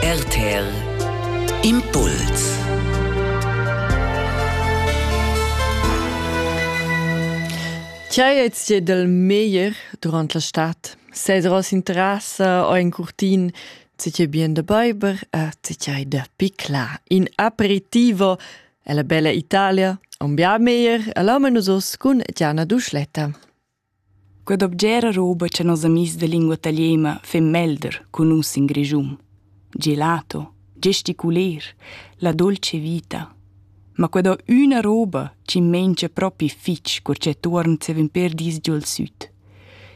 RTL Impuls Tgei ei ti dal meglier durant la stad? Sedros in terrassa o in curtin ti che bien da beiber e ti che hai dapi clar in aperitivo e la bella Italia un bia meglier e la nus cun Gianna Duschletta. Quella obgera roba cha nos amis da lingua taliena fin melder cun nus in Grischun. Gelato, gesticuler, la dolce vita. Ma quella üna roba chi mengia propi fich cur cha tuorn zevin per dis giò'l süd.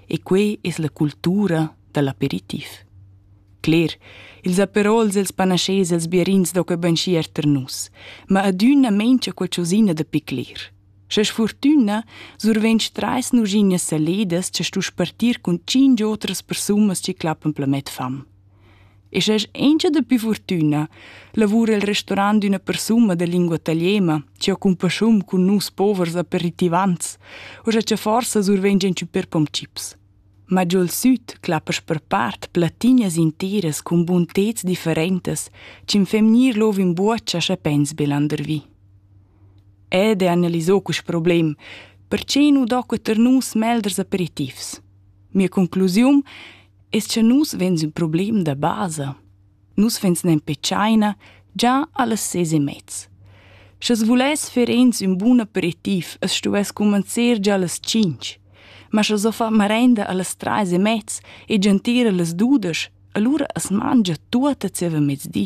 E que es la cultura da l'aperitiv. Cler, ils aperols e'ls panaschés e'ls bierins do que banchier tar nus, ma adüna mengia qualchosina da picler. Scha sfurtüna survegn trais nuschignas saledas cha stuess partir cun tschinch otras persunas chi clappan plamet fam. E scha es auncha dapi furtüna, lavura il restaurant d'üna persuna da lingua italiena chi ho cumpasschun cun nus povers aperitivants o scha cha forsa survegn gianchü per pom chips. Ma giò il süd clappasch per part plattinas interas cun bunteds differentas chi'm fem gnir lov in buocha scha pens be landervi. Ed è analisà quest problem, perche nu docca tar nus melders aperitivs. Mia conclusiun es cha nus vegns ün problem da basa. Nus vegns nempe tschaina già allas ses e mez. Sch'es vuless fer ins ün bun aperitiv, es stuvess cumanzer già allas tschinch. Ma sch'es ho fa marenda allas trais e mez e gentira allas dudesch, alura as mangia tuot a zieva mezdi.